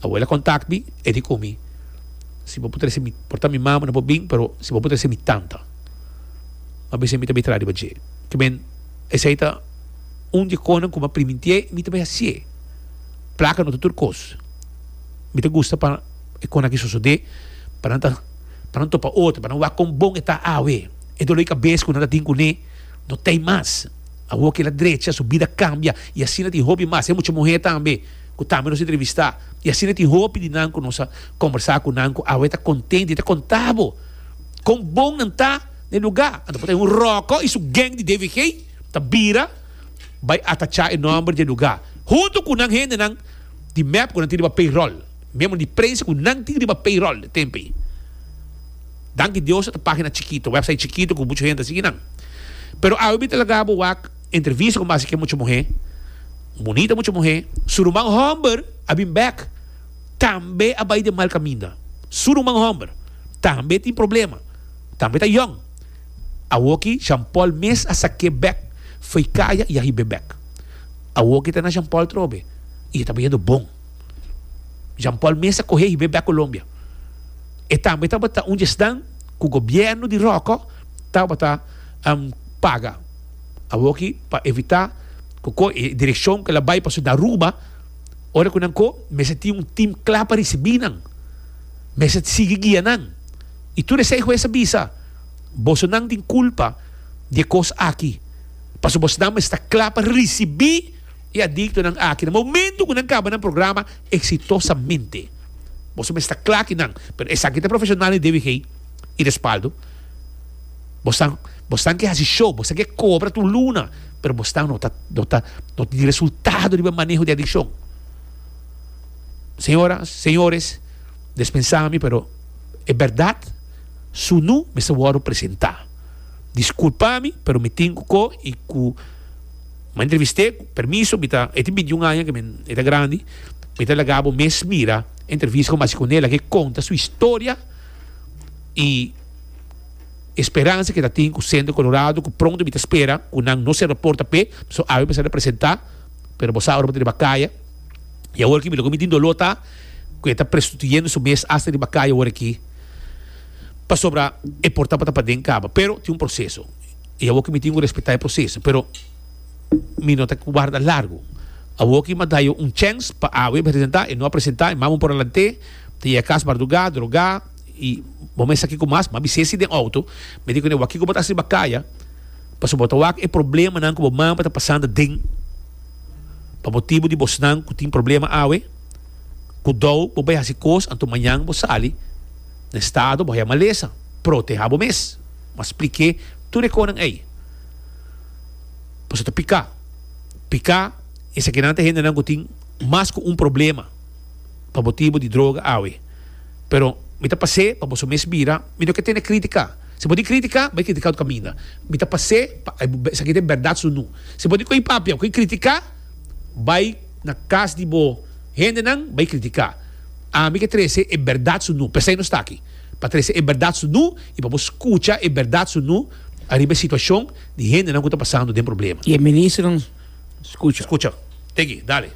Abuela contact mi e di cu mi, Si bo por trece mi, por ta mi mama no por bin, pero si bo por trece mi tanta, ma bisey mi ta bay traha riba dje. Kiben, esey ta un di e conan cu mi a primintié y mi ta bay hacié. Placa no ta tur cos. Mi ta gusta pa e conan aki sosode, pa nan ta, pa nan topa otro, pa nan wak con bon e ta awe. E dolor y cabes cu nan ta tin cu ne no t'ey mas. Awo kila drecha, su bida cambia y asina tin hopi mas. Hay mucha muher tambe. ku tambe nos a entrevistá i asina tin hopi di nan ku nos a kombersá ku nan ku awe ta kontent i ta kontá bo kon bon nan ta na e lugá. Anto por ta un ròkò i su geng di DVG ta bira bai atachá e nòmber di e lugá huntu ku nan hendenan di mep ku nan tin riba payroll, miembro di prensa ku nan tin riba payroll e tempu ei. Danki Dios ata página chikitu, wèpsait chikitu ku muchu hende a sigui nan. Pero awe mi ta laga bo wak. Entrevista cu Masi ke mucha muhé, un bunita mucha muhé, su ruman homber a bin bek, tambe a bai den mal caminda. Su ruman homber tambe tin problema, tambe ta yong. Awoki Jean Paul mes a saké bek fo'i caya y a hib'é bek. Awoki e ta na Jean Paul trobe y e ta bayendo bon. Jean Paul mes a coh'é hib'é bek Colombia. E tambe tabata un djesnan cu gobierno di Roko tabata paga. Awoki pa evitá ku ko e direkshon ku el a bai pasobra nan ruba, ora ku nan ko mester tin un tim kla pa risibí nan, mester sigui guia nan. I tur esei hues a bisa, Bosonan tin kulpa di e kos aki, pasobra bosonan mester ta kla pa risibí e adiktonan aki na momentu ku nan kaba nan programa eksitosamente. Boso mester ta kla kinan. Pero esaki ta profeshonal di DWG i respaldo. Bosnan bosnan ke hasi show, bosnan ke kobra tur luna, pero bosnan no ta no ta no tin resultado riba e maneho di adikshon. Señoras, señores, dispensá mi pero e bèrdat su nu mester wòrdu presentá. Diskulpá mi pero mi tin ku ko i ku mi a entrevist'é, ku permiso mi ta, e tin bintiun aña ke mi e ta grandi, mi ta laga bo mes mira e entrevista ku mi a hasi ku nela ke konta su historia i E speransa ke ta tin ku Centro Colorado ku pronto mi ta spera ku nan no sera porta p'e, so awe mi sa ta presentá, pero bo sa ora bo ta riba kaya, i awor aki loke mi tin doló ta ku e ta prestituyendo su mes asta riba kaya awor aki, pasobra e porta pa ta paden kaba, pero tin un proseso, i awor aki mi tin ku respetá e proseso, pero mi no ta warda largu, awor aki mi a da yo un chèns pa awe presentá, e no a presentá, e mama por alante, ta yega kas bardugá, drogá. Y bo mester sa kiko mas, ma bisesi den auto, mi di kuné, wak kiko bo ta hasi riba kaya, pasobra bo ta wak e problemanan ku bo mama ta pasando den, pa motibu di bosnan ku tin problema awe, kudou bo bai hasi kos, anto mañan bo sali na e stado, bo haña malesa. Protehá bo mes. Bo a spliké tur e konan ei. Pasobra ta piká. Piká, esakinan ta hendenan ku tin mas ku un problema. pa motibu di droga awe pero mi ta pas'é pa boso mes bira mi no ke tene krítika si bo tin krítika bai krítika otro kaminda mi ta pas'é pa esaki ta e bèrdat su nu si bo tin ko'i papia ko'i krítika bai na kas di bo hendenan bai krítika ami ke trese e bèrdat su nu p'esei nos ta aki pa trese e bèrdat su nu i pa bo skucha e bèrdat su nu ariba e situashon di hendenan ku ta pasando den problema i e ministronan. Scucha. Teki, dale.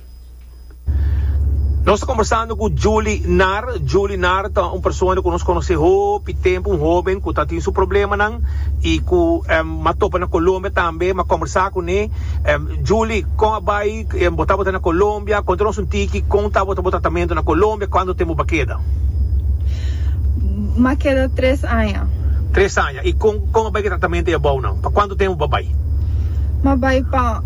Nos ta combersando cu Julie Nar. Julie Nar ta un persona cu nos conoce hopi tempo, un hoben cu ta tin su problemanan y cu a topa na Colombia tambe. M'a combersa cu ne. Julie, con a bay bota bota na Colombia? Conta nos un tiki con ta bota bo tratamento na Colombia? Cando tempo b'a keda? M'a keda tres aña. Tres aña. I con con a bay ki tratamento ya bou nan? Pa cuanto tempo bo a bay? Ma bay pa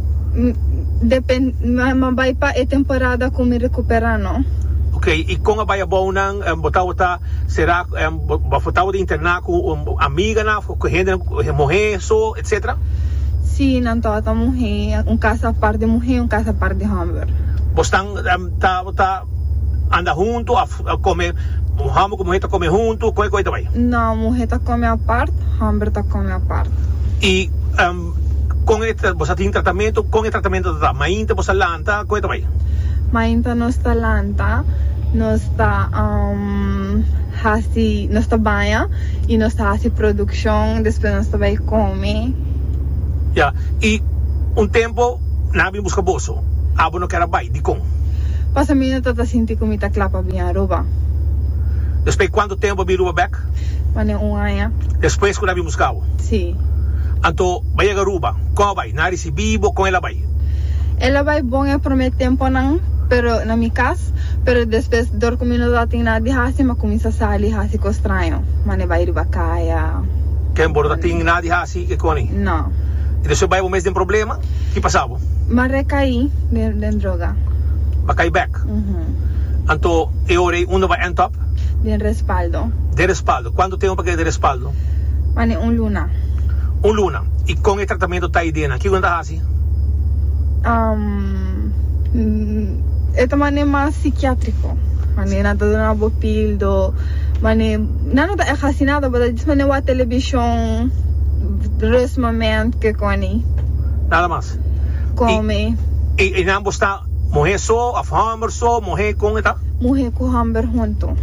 depend ma bay pa e temporada cu mi recupera no. Ok, i con a bay a bou nan? Bo tabata sera bo for tabata interna cu amiganan of cu hendenan cu muhe so etcetera? Si, nan tabata muhe, un casa apart di muhe, un casa apart di homber. Bo stan tabata. anda huntu of come homber cu muher ta come huntu koe koe ta bay. No muhe ta come apart homber ta come apart. Y con e bo sa tin tratamento con e tratamento ta ta mainta bo sa lanta koe ta bay. Mainta nos ta lanta nos ta hasi nos ta baña y nos ta hasi produccion despues nos ta bay come. Ya y un tempo nan a bin busca boso. Egipto. Abo no ker a bai, dikon? Pasobra mi no ta ta sinti ku mi ta kla pa bin a Aruba. Despui kuantu tempu a bin Aruba bek? Manera un aña. Despues ku nan a bin buska bo? Sí. Anto, bo a yega Aruba. Kon a bai? Nan a risibi bo? Kon el a bai? El a bai bon e promé tempunan, pero na mi kas, pero despues dor ku mi no tabatin nada di hasi, mi a kuminsá sali hasi kos straño, manera bai riba kaya, Ken bo no tatin nada di hasi, kikoni? No. I despues bai bo mes den problema? Ki pasa bo? M'a recaí den droga. M'a cai bek. Anto e ora ei unda bo a end up? Den respaldo. Den respaldo. Cuantu tempo pa keda den respaldo? Mas den un luna. Un luna. I con e tratamento ta idenan? Kiko nan ta haci? E ta manera mas psiquiatrico. Manera nan ta duna bo pildo. Manera, nan no ta echt haci nada, bo ta disp manera wak television, rust moment, kikoni. nada mas. Come. Y, y, y nan bo sta muhe so of homber so, muhe con e ta? Muhe cu homber hunto.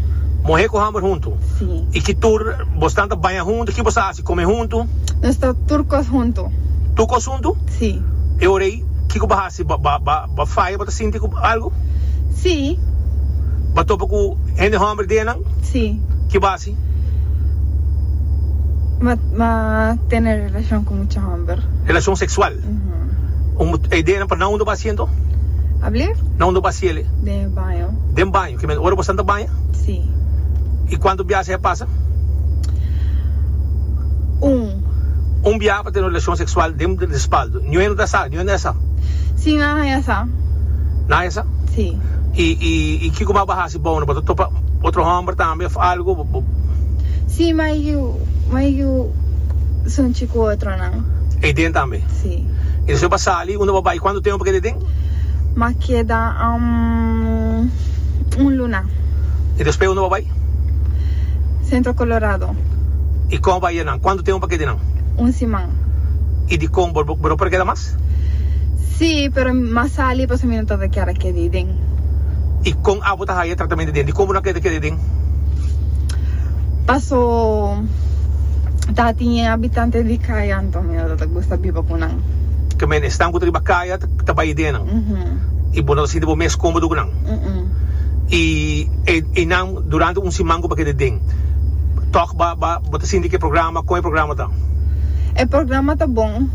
Muhe cu homber hunto. Si. Y ki tur bo stan ta baña hunto, ki bo sta haci? Come hunto? Nos ta tur cos hunto. Tur cos hunto? Si. E ora ey kico bo haci? Bo, bo, bo, bo faya bo ta sinti cu algo? Si. Bo topa cu hende homber den nan? Si. Ki bo haci? Jesús. M'a tene relacion cu mucha homber. Relacion sexual. Un idea nan pa nan unda bo a haci ento? A blier. Nan unda bo a haci ele? Den e baño. Den baño, ki mester ora bo santa baña? Si. Y cuanto biaha esei a pasa? Un. Un biaha pa tene un relacion sexual den respaldo. Niuwe no ta sa? Niuwe no esa? Si, nan a haya sa. Nan a haya sa? Si. Y kiko mas bo a haci? Dibou no bo ta topa otro homber tambe of algo bo. Sí ma y yu ma y yu sunchi cu otronan. Ey den tambe. Sí. Y despues pa sali unda bo bay cuantu tempo pa keda ey den? Ma keda um un luna. Y despues unda bo bay? Centro Colorado. Y con bo bay e nan? Cuantu tempo pa keda ey nan? Un siman. Y dicon bo no por keda mas? Jesús. Sí, pero m'a sali pasobra mi no ta ta kier a keda ei den. I kon abo ta haya tratamente den di kon bo no a kier ta keda ei den? Paso tati e habitante di kaya anto mi no ta ta gusta biba ku nan. Ke men esnan ku ta riba kaya ta bai den nan i bo no ta sinti bo mes komodo ku nan. I einan durante un siman ku bo a keda den, tòg ba. Bo ta sinti ki e programa, kon e programa ta? E programa ta bon.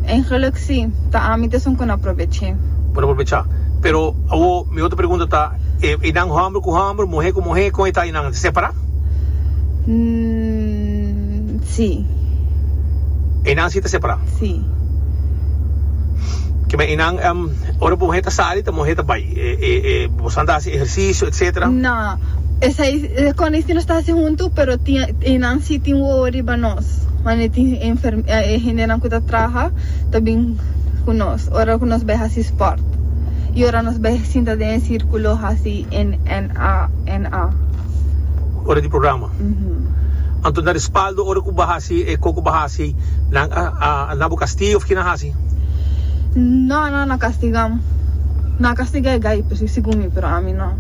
En geluk si, ta ami t'esun ku na probeché. Bo na probechá. Pero awo mi otro pregunta ta, e einan hòmber ku hòmber, muhé ku muhé, kon e ta einan? Ta separá? N-n-n-n, si. Einan si ta separá? Si. Ke men einan, em, ora muhé ta sali, ta muhé ta bai. E, e, e, bo san ta hasi ehersisio, etcetera? Na. Esei. Con esey nos ta haci hunto pero tin nan si tin wowo riba nos wande e tin e hende nan cu ta traha ta bin cu nos ora cu nos bay haci sport y ora nos bay sinta den e circulo haci NNANA. Ora di programa anto na respaldo ora cu ba haci e co cu ba haci nan a na bo castig of ki nan haci. No no na kastigam no a kastiga e gai presis si ku mi pero ami no.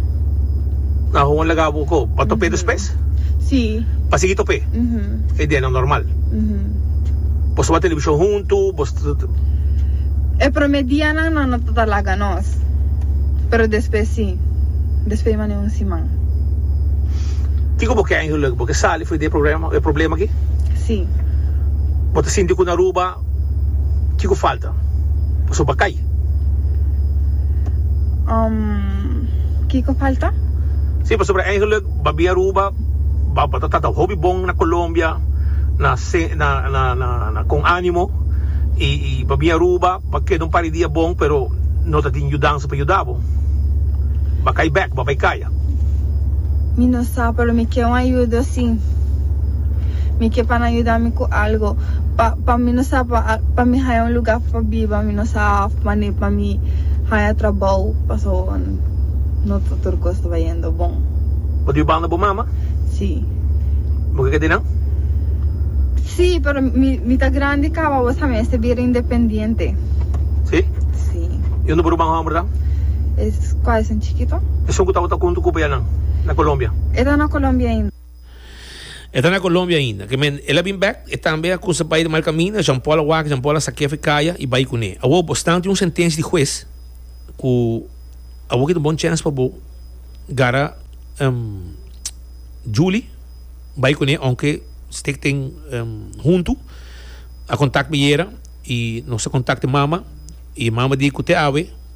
Na hon laga bo ko pa top'é despes? Si. Pa sigui top'é? E dianan normal. Bo tabata televishon huntu bo tabata. E promé dianan no no tabata laga nos pero despes si despes mane un siman. Kiko bo ke ainge lek bo ke sali for di e problema aki? Si. Bo ta sinti ku na Aruba. Kiko falta pa su bakay? Kiko falta? Sí, pasobra eigenlik Babi Aruba ta tata hopi bon na Colombia na na con animo y y Babi Aruba a keda un par di dia bon pero no ta tin yudansa pa yuda bo. Bakay bek, babay kaya. Marta. Mi no sa, pero mi ke un ayudo si mi ke pa nan yuda mi ku algo, pa pa mi no sa pa pa mi haya un luga pa biba, mi no sa of mane pa mi haya trabou, paso no ta tur kos taba yendo bon. Bo di banda bo mama? Si. Bo ke ke di nan? Si, pero mi mi ta grandi kaba, bo sa mi mester bira independiente. Si? Si. I unda bo ruban homber dan? Es kual. chikito. Esun ku tabata kuntu ku payanan na Colombia. E ta na Colombia ainda. E ta na Colombia ainda. Ke men el a bin bek, e tambe a kusa bai di mal kaminda. Jean Paul a wak, Jean Paul a sak'é fu kaya i bai kuné. Awor bo sta ante un sentensia di hues ku awor kita un bon chèns pa bo gara Julie bai kuné ounke stik tin huntu. A kontak mi yera i nos a kontak e mama i e mama di ku te awe.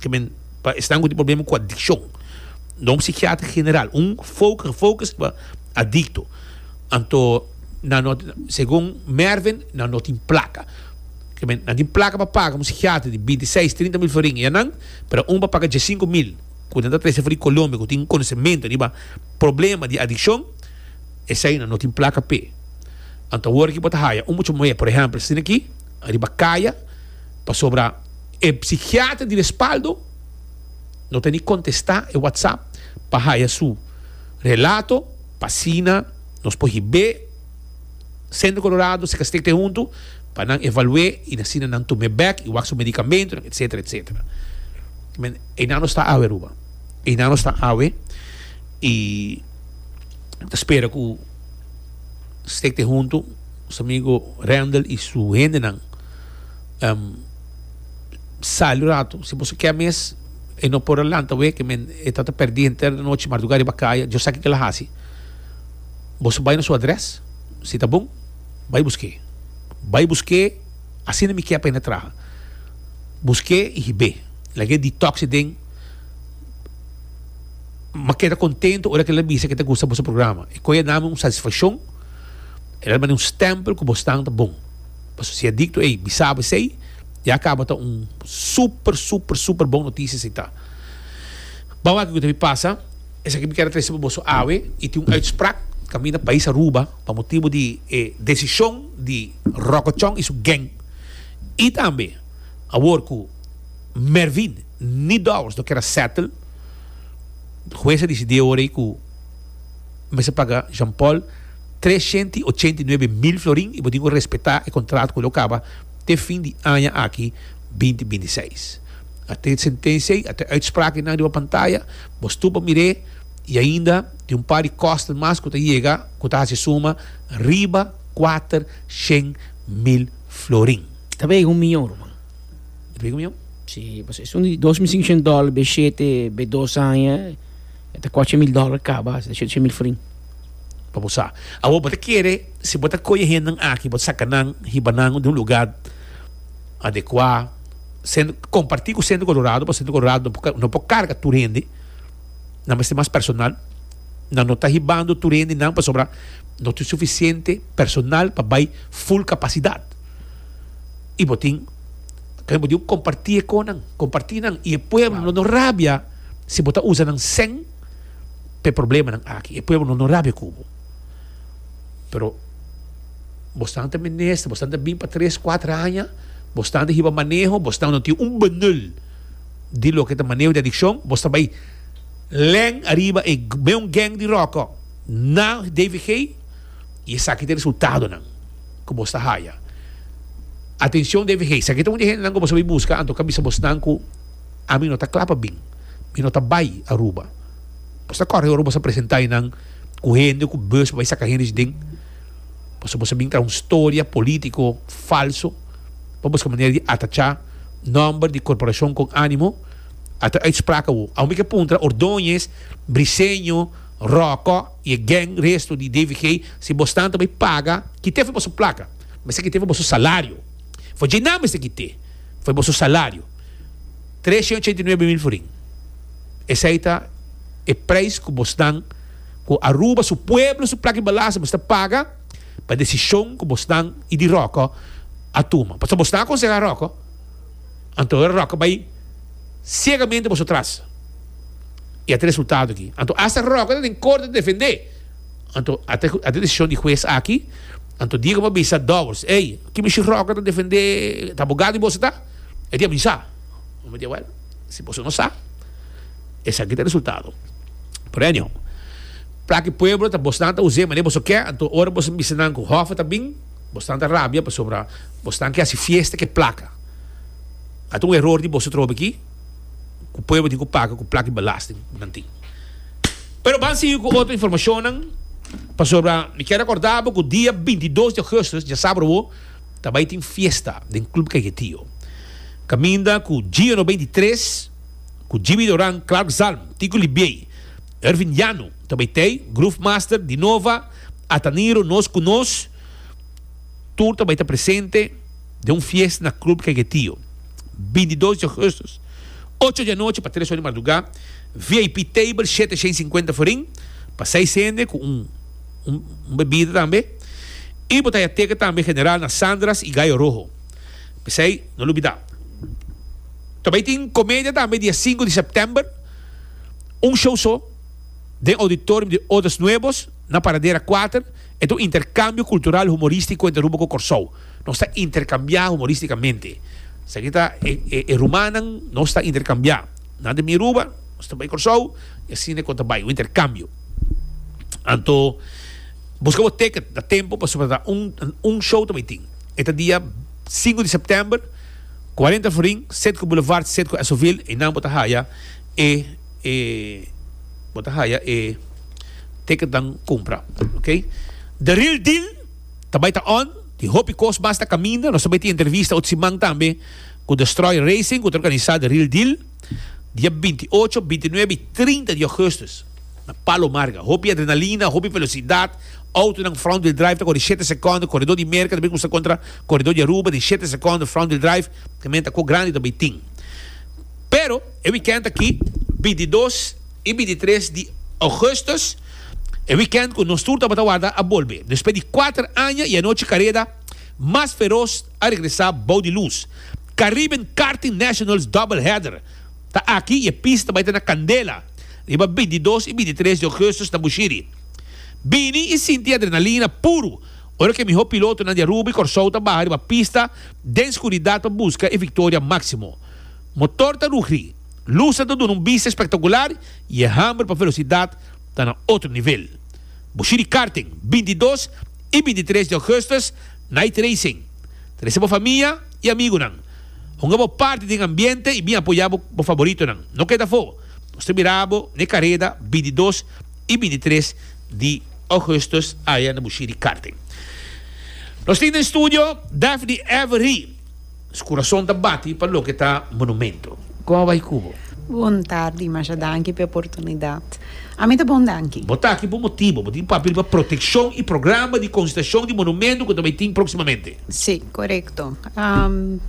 ke men pa esnan ku tin problema ku adikshon. Don psikiatra general, un fokus gefokus pa adikto. Anto nan no tin, segun Mervin, nan no tin plaka. Ke men, nan tin plaka pa paga un psikiatra di binti seis, trinta mil florin i anan, pero un pa paga dies sinku mil, ku nan ta trese for di Colombia, ku tin konosementu riba problema di adikshon, esei nan no tin plaka p'e. Anto awor aki bo ta haya un mucha muhé, por ehèmpel, a sininaki riba kaya pasobra. E psikiater di respaldo no teni kontestá e WhatsApp pa haya su relato pa asina nos por hib'é Centro Colorado, Secastec te huntu pa nan evalu'é i na asina nan tum'é bèk i wak su medikamentunan etsetera etsetera. Men einan nos ta awe Aruba, einan nos ta awe i mi ta spera ku Stec te huntu nos amigo Randall i su hendenan. Um, sali un ratu. Si boso ke mes, e no por a lanta wei, ke men e ta ta perdí henter di anochi mardugá riba kaya. Dios sa kiko el a hasi. Boso bai na su adrès, si ta bon, bai busk'é. Bai busk'é, asina mi ke pa e na traha. Busk'é i hib'é. Lag'é detox e den. M'a keda kontentu ora ke el a bisa ke ta gusta boso programa. E koe a dame un satisfakshon, el a bani un stèmpel ku bosnan ta bon. Pasobra si e dicto ey bisaba esey, ya caba ta un super, super, super bon noticia esey ta. Bou wak kico ta bin pasa, esaki mi quier a trece pa boso awe, y tin un uitspraak caminda pais Aruba pa motibo di e decision di Rokochon y su gang. Y tambe, awor cu Mervin ni Dowers no quier a settle, hues a dicidi awor ey cu, mester paga Jean Paul tres shenta i ochenta i nuebe mil florin i bo tin ku respetá e kontrato ku lo kaba te fin di aña aki binti binti seis. A te sentensia ei, a te uitspraak einan riba pantaya, bo stupa mir'é i ainda tin un par di kòsten mas ku ta yega ku ta hasi suma riba kuater shen mil florin. Ta vega un miyon, ruman. Ta vega un miyon? Sí, pasobra esun di dos mil sinkoshen dòler b'e shete b'e dos aña. E ta coche mil dollar caba asta shete shete mil frin pa bo sa. Awor bo ta kere si bo ta coye henden aki bo ta saca nan hiba nan den un lugar adecua cen comparti cu centro colorado pasobra centro colorado no por carga tur hende nan mester mas personal nan no ta hibando tur hende nan pasobra no tin suficiente personal pa bay full capacidad y bo tin comparti e con nan comparti nan y e pueblo no rabia. si bo ta usa nan sèn pa e problemanan aki e pueblo no no rabia ku bo pero bosnan ta mester bosnan ta bin pa tres kuater aña bosnan ta hiba maneho bosnan no tin un benul di loke ta maneho di adikshon bos ta bai lèn ariba e meun geng di ròkò na dvg i esaki ta e resultadonan ku bos ta haya atenshon dvg esaki ta un di e hendenan ku bo bai buska anto ku a bisa bosnan ku Ami no ta kla pa bin. Mi no ta bai Aruba. Bo sa kòrda e ora bo sa presentá ei nan ku hende ku bus pa bai saka hende di den? Pasobra bo sa bin traha un storia polítiko falso pa buska manera di atachá nòmber di korporashon kon ánimo. A ta uitspraak awor. Awor mi ke puntra Ordóñez, Briseño, Ròkò i e gèng resto di DVG si bosnan ta bai paga kit'é for boso plaka. Mester kit'é for boso salario. For dje nan mester kit'é for boso salario. Tres i ochenta i nuebe mil forin. Esei ta e preis ku bo snan ku Aruba su pueblo su plaki balasa bo sta paga pa desishon ku bo snan i di Roko a tuma. Pasobra bo snan a konsehá Roko, anto awor Roko bai siegamente boso tras i a ta resultado aki. Anto hasta Roko ta den korte ta defendé. Anto a ta e desishon di hues aki, anto Diego por bisa dòbbels, ey, kimisha Roko ta defendé, ta abogado di boso ta? E di a bisa. Mi di, Wèl, si boso no sa, esaki ta e resultado. Pero anyhow, plak e pueblo ta bosnan ta us'é mané boso ke, anto ora boso bisa nan ku Hoffa ta bin, bosnan ta rabia pasobra bosnan ke hasi fiesta ku e plak. Ata un eror di boso trobe aki ku pueblo tin ku paga ku plak di belasting ku nan tin. Pero ban sigui ku otro informashonnan, pasobra mi kier rekordá bo ku dia bintidos di ougùstus, dja sabru awor, ta bai tin fiesta den Club Cajetio. Caminda cu Gio Noventa i Tres, cu Jimmy Doran, Clark Zalm, Tico Libiey, Ervin Llano ta bai tey, Groove Master, Dinova, Ataniro, Nos Cu Nos, tur ta bai ta presente den un fiesta na Club Cajetio. Binti dos di Augustus, ocho di anochi pa tres or di marduga, VIP table shete shen cincuenta forin, pa seis hende cu un. un bebida tambe y bo ta haya teken tambe general na Sandra's y Gallo Rojo. P'esey no lo bida. Ta bay tin comedia tambe dia sinku di september, un show so den auditorium di Odas Nuevos na Paradera kuater. E ta un intercambio cultural humoristico entre Aruba cu Corsou. Nos ta intercambia humoristicamente. Esaki ta e e rumannan nos ta intercambia. Nan ta bin Aruba, nos ta bay Corsou y asina e con ta bay, un intercambio. Anto busca bo ticket na tempo pasobra ta un un show ta tin. E ta dia 5 di september 40 florin Setco Boulevard Setco Esoville y nan bo ta haya e e bo ta haya e ticket nan cumpra okay. The real deal ta bay ta on y hopi cos mas ta caminda nos ta bay tin entrevista ot siman tambe cu Destroy Racing cu ta organiza the real deal. Dia binti i ocho, binti i nuebe i trinta di ougustus na Palo Marga, hopi adrenalina, hopi velosidat, outonan front wheel drive ta kore shete sekondo, koredó di Merka ta bin usa kontra koredó di Aruba den shete sekondo, front wheel drive, te men ta ko grandi ta bai tin. Pero e wikènt aki, binti i dos i binti i tres di ougustus, e wikènt ku nos tur tabata warda a bolbe, despues di kuater aña i anochi kareda mas feros, a regresa bou di lus. Caribbean Karting Nationals Double Header ta aki y e pista ta bai ta na candela riba binti i dos y binti i tres di augustus na Bushiri. Bini y sinti adrenalina puru ora cu e miho pilotonan di Aruba y Corsou ta baha riba pista den scuridad pa busca e victoria maximo. Motor ta rugri, lusnan ta duna un bista espectacular y e hamber pa velocidad ta na otro nivel. Bushiri Karting, binti i dos y binti i tres di augustus Night Racing. Trese bo famia i amigunan. Hunga bo parti den ambiente i bin apoyá bo bo faboritonan. No keda afó! Nos ta mirá bo n'e kareda binti dos i binti tres di Augustus aya na Bushiri Karting. Nos tin den studio Daphne Avery. Su kurason ta bati pa loke ta monumento. Kon a bai ku bo? Bon tardi, masha danki pa e oportunidat. Ami ta bon danki. Bo ta aki pa un motibu. Bo tin papel pa protekshon i programa di konsitashon di monumentu ku ta bai tin próksimamente. Sí, korekto.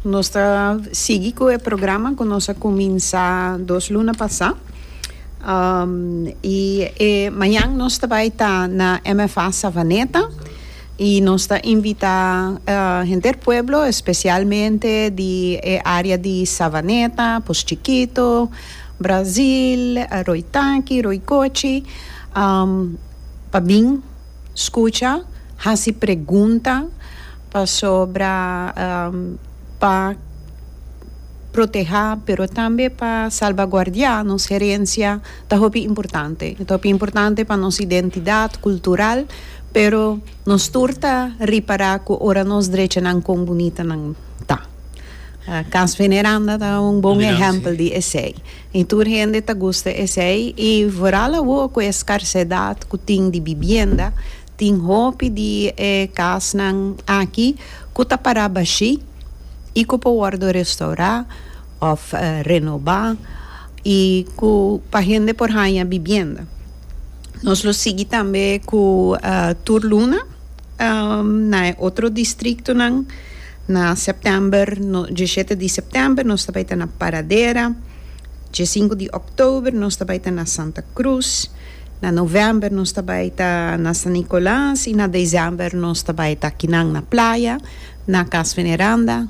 Nos ta sigui ku e programa ku nos a kuminsá dos luna pasá. I e mañan nos ta bai ta na MFA Savaneta. Y nos ta invita henter pueblo, especialmente di e área di Savaneta, Post Chikito, Brazil, Rooi Taki, Rooi Kochi, pa bin scucha, haci pregunta pasobra pa proteha pero tambe pa salvaguardia nos herencia. ta hopi importante. Ta hopi importante pa nos identidad cultural, pero nos tur ta ripara cu ora nos drechanan con bunitanan ta. Cas Veneranda ta un bon ehempel di esey. Y tur hende ta gusta esey y vooral awo cu e scarcedad cu tin di bibienda, Tin hopi di e kasnan aki ku ta pará bashí i ku por wòrdu restaurá òf renobá i ku pa hende por haña bibienda. Nos lo sigui tambe ku tur luna na e otro distriktonan. Na sèptèmber, dieshete di sèptèmber nos ta bai ta na Paradera, diesinku di òktober nos ta bai ta na Santa Krus. Na novèmber nos ta bai ta na San Nicolas i na desèmber nos ta bai ta kinan na playa, na Cas Veneranda.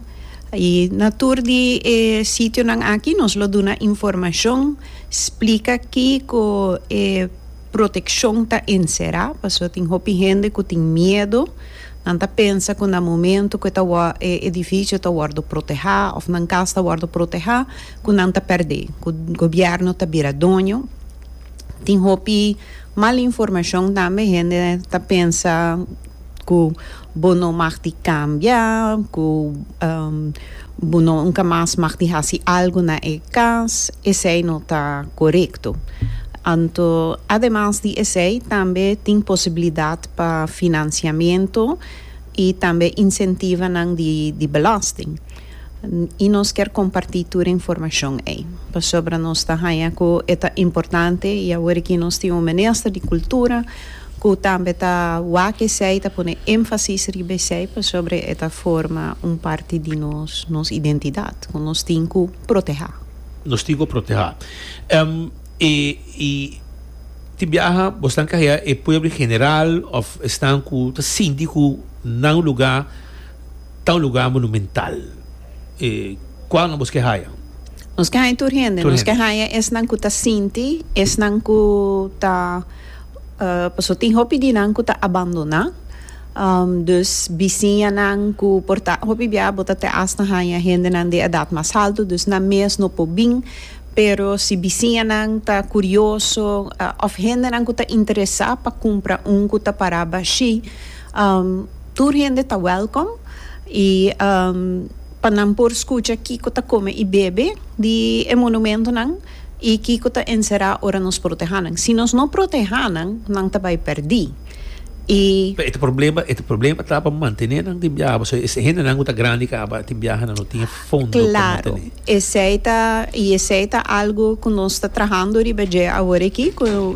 I na tur di e sitionan aki nos lo duna informashon, splika kiko e protekshon ta enserá, pasobra tin hopi hende ku tin miedu, nan ta pensa ku na momentu ku e ta wòrdu e edifisio ta wòrdu protehá òf nan kas ta wòrdu protehá ku nan ta pèrdé, ku gobièrnu ta bira doño. Tin hopi mal informacion tambe hende ta pensa cu bo no mag di cambia cu bo no nunca mas mag di haci algo na e cas esey no ta corecto anto ademas di esey tambe tin posibilidad pa financiamento y tambe incentivonan di belasting. I nos kier kompartí tur e informashon ei, pasobra nos ta haña ku e ta importante i awor aki nos tin un minister di kultura ku tambe ta wak esei, ta pone énfasis riba esei, pasobra e ta forma un parti di nos, nos identidat ku nos tin ku protehá. Nos tin ku protehá. E i tin biaha bo stan kahia e pueblo en general òf esnan ku ta sinti ku nan lugá. Ta un lugar monumental. E cual nos ke haya? Nos ke haya tur hende. Nos ke haya esnan cu ta sinti, esnan cu ta, pasobra tin hopi di nan cu ta abandona. Dus bisiñanan cu por ta, hopi bia bo ta te hasta haya hendenan di edad mas alto, dus nan mes no por bin, pero si bisiñanan ta curioso of hendenan cu ta interesa pa cumpra un cu ta para bashi. Tur hende ta welkom y pa nan por scucha kico ta come y bebe di e monumentonan y kico ta encera ora nos proteha nan. Si nos no proteha nan, nan ta bay perdi y. Pero e ta problema, e ta problema ta pa mantene nan den biaha pasobra e hendenan cu ta grandi caba den biaha nan no tin e fondo pa mantene. Claro, esey ta y esey ta algo cu nos ta trahando riba dje awor aki cu.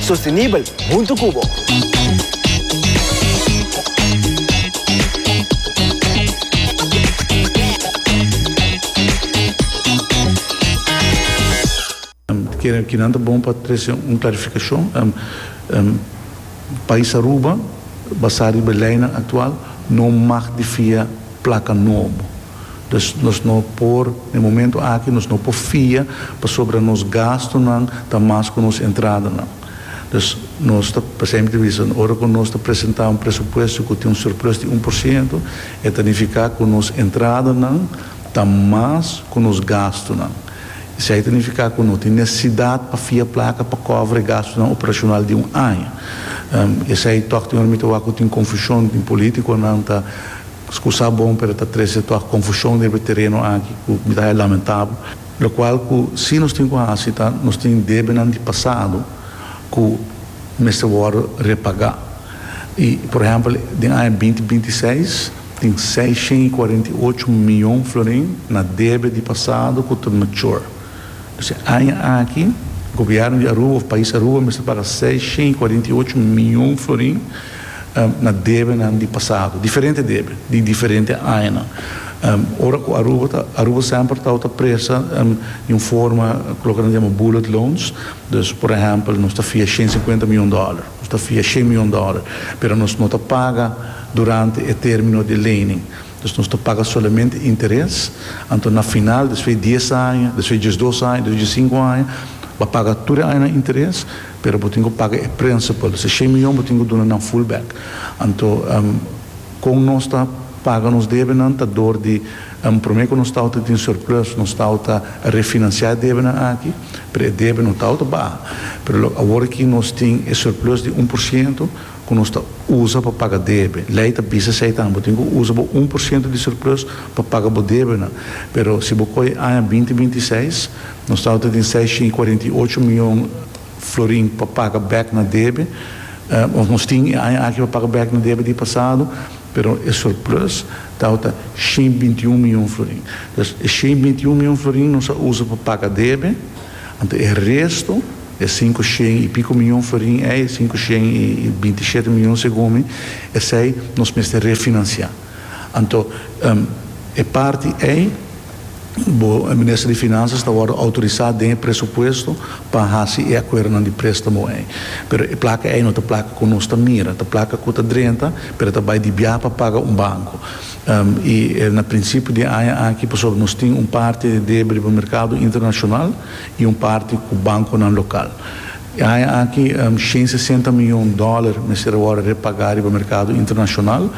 Sostenibel huntu cu bo. Kinan ta bon pa trece un clarificacion? Pais Aruba, basá riba leinan actual, no mag di fia placa nobo. Dus nos no por, den momento aki nos no por fia pasobra nos gastunan ta mas ku nos entradanan. Dus nos ta, pasei mi ta bisa, ora ku nos ta presentá un presupuesto ku tin un surplus di un por siento, e ta nifiká ku nos entradanan ta mas ku nos gastunan. Esei ta nifiká ku no tin nesesidat pa fia plaka pa kòbra e gastunan operashonal di un aña. Esei tòg tin ora mi ta wak ku tin konfushon, tin polítikonan ta. Scusa bon pero ta trece toa confusion riba e tereno aki cu mi ta haya lamentabel, locual cu si nos tin cu haci ta nos tin debenan di pasado cu mester worde repaga y por ehempel den aña binti binti seis tin seiscientos y cuarenta y ocho mion florin na debe di pasado cu ta mature dus e aña aki gobierno di Aruba of pais Aruba mester paga seiscientos y cuarenta y ocho mion florin na debenan di pasado, diferente debe di diferente añanan. Ora ku Aruba ta, Aruba semper tau ta presa di un forma ku loke nan yama bullet loans. Dus, por ehèmpel, nos ta fia shen sinkuenta mion dòler, nos ta fia shen mion dòler, pero nos no ta paga durante e término di e lening. Dus nos ta paga solamente interes. Anto na final, despues di dies aña, despues di diesdos aña, despues di diesinku aña, bo a paga tur e añanan interes. Pero bo tin cu paga e principal. Si shei miyon bo tin cu duna nan full back. Anto con nos ta paga nos debenan ta door di prome cu nos tawata tin surplus, nos tawata refinancia e debenan aki, pero e debe no tawata baha. Pero lo awor aki nos tin e surplus di un por ciento cu nos ta usa pa paga debe. Ley ta bisa esey tambe. Bo tin cu usa bo un por ciento di surplus pa paga bo debenan. Pero si bo coye aña binti binti seis, Nos ta outa tin seis shin cuarenta i ocho mion florin pa paga bek na debe, of nos tin e aña aki pa paga bek na debe di pasado, pero e surplus ta outa shin binti i un mion florin. Pues e shin binti i un mion florin nos a usa pa paga debe, anto e resto, e sinku shin i pico mion florin ei, sinku shin i binti i shete mion segun mi, esei nos mester refinancia. Anto e parti ei bo Minister di Finanzas ta wòrdu outorisá den e presupuesto pa hasi e akuerdonan di préstamo ei. Pero e plaka ei no ta plaka ku nos ta mira, ta plaka ku ta drenta pero ta bai di biaha pa paga un banko. I na prinsipio di aña aki pasobra nos tin un parti di debe riba merkado internashonal i un parti ku bankonan lokal. E aña aki shen sesenta miyon dòler mester a wòrdu repagá riba merkado internashonal.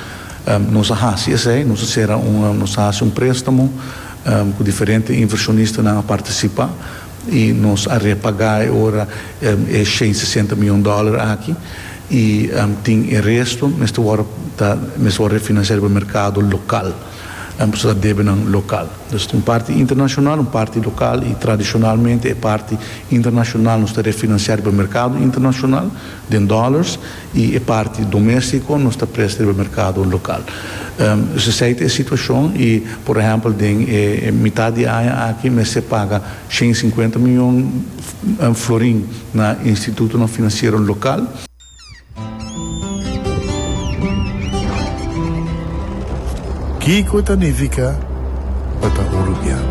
Nos a hasi esei, nos a sera un, nos a hasi un prestamo cu diferente inversionistanan a participa y nos a repaga e ora e shen sesenta miyon dollar aki y tin e resto mester worde ta mester worde refinancia riba mercado local pasobra ta debenan local. Dus tin un parti internacional, un parti local y tradicionalmente e parti internacional nos ta refinancia riba mercado internacional. Den dollars y e parti domestico nos ta presta riba mercado local. Sesey ta e situacion y por ehempel den e mitad di aña aki mester paga shen y cincuenta miyon florin na institutonan financiero local. Kico ta nifica pa ta Uruguiano?